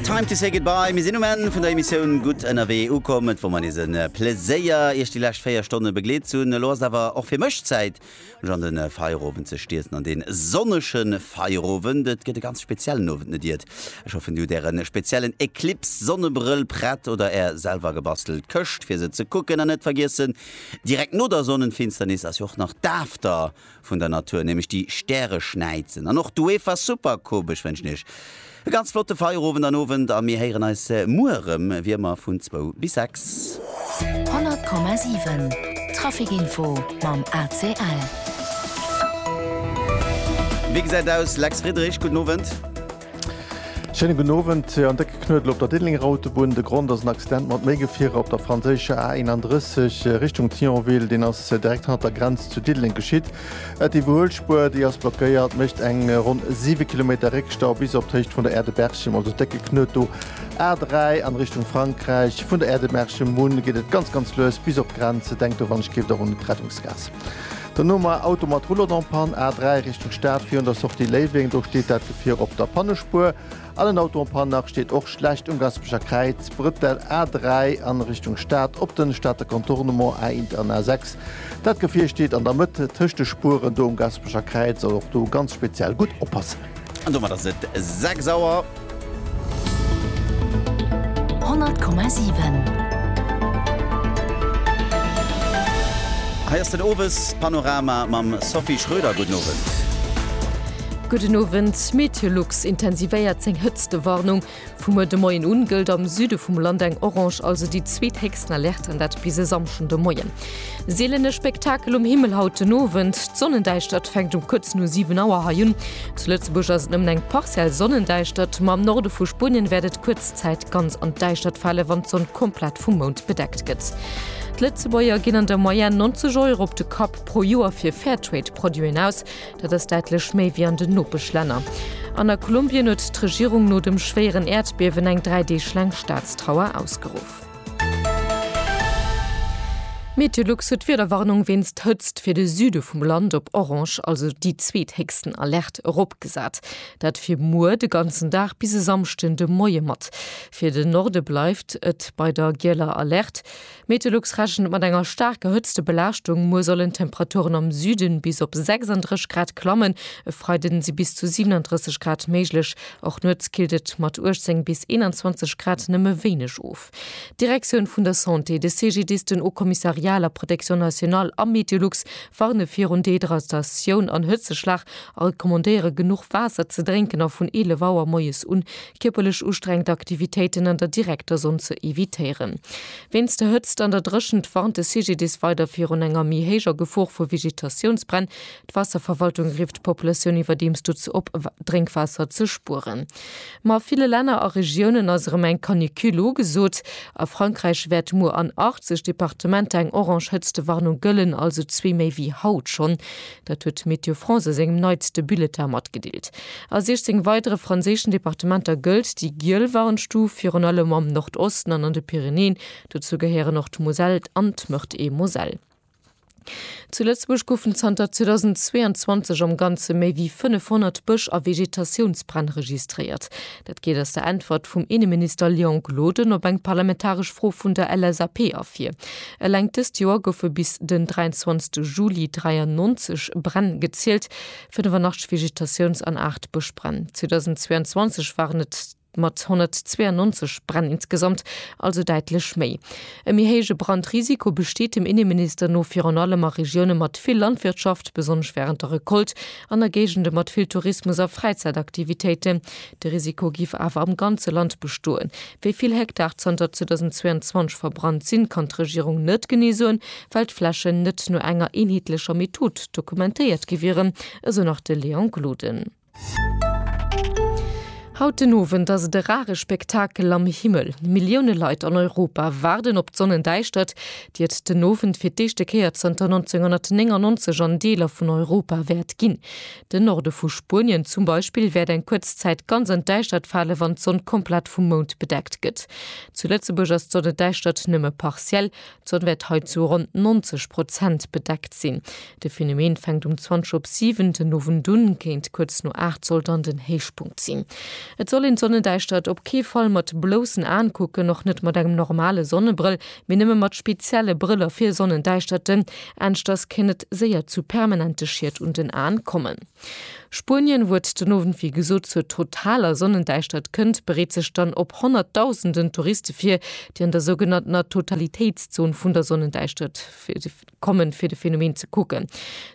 Time to say goodbye, mir sinn um Enn vun der Emissioun Gutt ënnerwee ukomm. Et wor mer nees e Pleséier Iech déi lescht 4 Stonne begleet ze hunn. Elo ass et awer och fir mech Zäit mech an de Feierowend ze stierzen, an dee sonnege Feierowend. Et gëtt e ganz speziellen Owend, net iert. Ech hoffen dir hutt äre speziellen Eclipse Sonnebrëll prett oder är selwer gebastelt Këscht fir se ze kucken. An net vergiessen, direkt no der Sonnenfinsternis ass jo och nach d'After vun der Natur, nämlech déi Stäreschnäizen an och d'UEFA Super Coupe. Ech wënschen Iech e ganz flotte Feierowend an Owend a mir héieren eis muer erëm, wéi ëmmer vun zwou bis sechs. 100,7 Traficinfo mam ACL. Wéi gesäit aus, Lex Friedrich? Gudden Owend. Schéinen gudden Owend. En décke Knuedel op der Diddelenger Autobunn. De Grond ass en Accident mat méi Gefierer op der franséischer A 31 Richtung Thionville. Deen ass direkt hannert der Grenz zu Diddeleng geschitt. D'Iwwerhuelspuer, déi ass blockéiert, mécht eng ronn 7 Kilometer Réckstau bis op d'Héicht vun der Aire de Berchem. Also décke Knuet do. A 3 an Richtung Frankräich. Vun der Aire de Berchem un geet et ganz ganz lues bis op d'Grenz. Denkt do wann ech géift och un d'Rettungsgaass. Dono mar Auto mat Roulotte en panne, A3 Richtung Stad virun der Sortie Léiweng, do steet dat Gefier op der Pannespuer. An en Auto en panne nach steet och schlecht um Gaspecher Kräiz, Bretel A3 an Richtung Stad op den Stater Contournement, A-Int an A6. Dat Gefier steet an der Mëtt tëscht de Spueren do um Gaspecher Kräiz, also och do ganz speziell gutt oppassen. An domat ass et 6 Auer. 100,7. Hei ass den Owespanorama mam Sophie Schröder. Gudden Owend. Gudden Owend. Meteolux intensivéiert seng Hëtztewarnung. Vum muer de Moien un gëllt am Süde vum Land eng Orange, also déi zweethéchsten Alerte, an dat bis e Samschden de Moien. Sielene Spektakel um Himmel haut den Owend, D'Sonnendäischtert fänkt um kuerz no 7 Auer hei un. Zu Lëtzebuerg ass et nëmmen eng partiell Sonnendäischtert, ma am Norde vu Spuenien wäert et kuerz Zäit ganz an d'Däischtert fale wann d'Sonn komplett vum Mound bedeckt gëtt. D'Lëtzebuerger ginn an der Moyenne 90 Euro op de Kapp pro Joer fir Fairtrade-Produiten aus. Dat ass däitlech méi wéi an den Nopeschlänner. An a Kolumbien huet d'Regierung no dem schwéieren Äerdbiewen eng dräi Deeg laang Staatstrauer ausgeruff. Meteolux huet d'Wiederwarnung wéinst Hëtzt fir de Süde vum Land op Orange, also déi zweethéchsten Alerte, eropgesat. Dat fir muer de ganzen Dag bis e Samschden de Moie mat. Fir den Norde bleift et bei der Gieler Alerte. Meteolux rechent mat enger staarker Hëtztebelaaschtung. Muer sollen d'Temperaturen am Süde bis op 36 Grad klammen, e Freide si bis zu 37 Grad méiglech. Och nuets killt et mat 18 bis 21 Grad nëmme wéineg of. D'Direktioun vun der Santé, de CGDIS, den Haut Commissariat à la Protection Nationale a Meteolux warne virun Dehydratatioun an Hëtzeschlag a recommandéiere genuch Waasser ze drénken a vun 11 Auer moies un kierperlech ustrengend Aktivitéiten an der direkter Sonn ze evitéieren. Wéinst der Hëtzt an der Dréchent warnt de CGDIS weider virun enger méi héijer Gefor vu Vegetatiounsbränn. D'Waasserverwaltung rifft d'Populatioun iwwerdeems dozou op, Drénkwaasser ze spueren. Ma a ville Länner a Regiounen ass erëm eng Canicule ugesot. A Frankräich wäert muer an 80 Departementer eng orange Hëtztewarnung gëllen, also zwee méi wéi haut schonn. Dat huet Météo France a sengem neitste Bulletin matgedeelt. A 16 weidere franséischen Departementer gëllt déi giel Warnstuf, virun allem am Nordosten an an de Pyrenäen. Dozou gehéieren och d'Moselle an d'Meurthe-et-Moselle. Zu Lëtzebuerg goufen zanter 2022 am Ganze méi wéi 500 Bësch a Vegetatiounsbränn registréiert. Dat geet aus der Äntwert vum Inneminister Léon Gloden op eng parlamentaresch Fro vun der LSAP ervir. Eleng dëst Joer goufe bis den 23 Juli 93 Bränn gezielt, 85 Vegetatiouns an 8 Bëschbränn. 2022 waren et mat 192 Bränn insgesamt also däitlech méi. E méi héije Brandrisiko besteet dem Inneminister no virun allem a Regioune mat vill Landwirtschaft, besonnesch wärend der Recolte an a Géigende mat vill Tourismus a Fräizäitaktivitéiten. De Risiko géif awer am ganze Land bestoen. Wéi vill Hektar zanter 2022 verbrannt sinn, kann d'Regierung net genee soen, well d'Flächen net no enger eenheetlecher Method dokumentéiert gi wieren, esou nach de Léon Gloden. Haut den Owend ass et e rare Spektakel am Himmel. Millioune Leit an Europa waarden op d'Sonnendäischtert, déi et den Owend fir d'éischte Kéier zënter 1999 an Deeler vun Europa wäert ginn. Den Norde vu Spuenien zum Beispill wäert eng kuerz Zäit ganz an d'Däischtert fale wann d'Sonn komplett vum Mound bedeckt gëtt. Zu Lëtzebuerg ass d'Sonnedäischtert nëmme partiell, d'Sonn wäert hei zu ronn 90 Prozent bedeckt sinn. De Phenomen fänkt um 20 op 7 den Owend un, kéint kuerz no 8 soll dann den Héichpunkt sinn. Et soll een d'Sonnedäischtert op kee Fall mat bloussen Aen kucken, och net mat engem normale Sonnebrëll. mee nëmme mat spezielle Brëller fir Sonnendäischterten, anschters kéint et séier zu permanente Schied un den Aen kommen. Spuenien, wou et den Owend wéi gesot zur totaler Sonnendäischtert kënnt, bereet sech dann op honnertdausenden Touriste vir, déi an der sougenanntener Totalitéitszon vun der Sonnendäischtert kommen, fir de Phänomen ze kucken.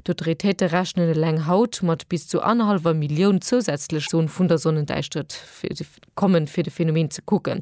D'Autoritéite rechnen eleng haut mat bis zu annerhallwer Millioun zousätzlech Sonnendäischtert kommen, fir de Phänomen ze kucken.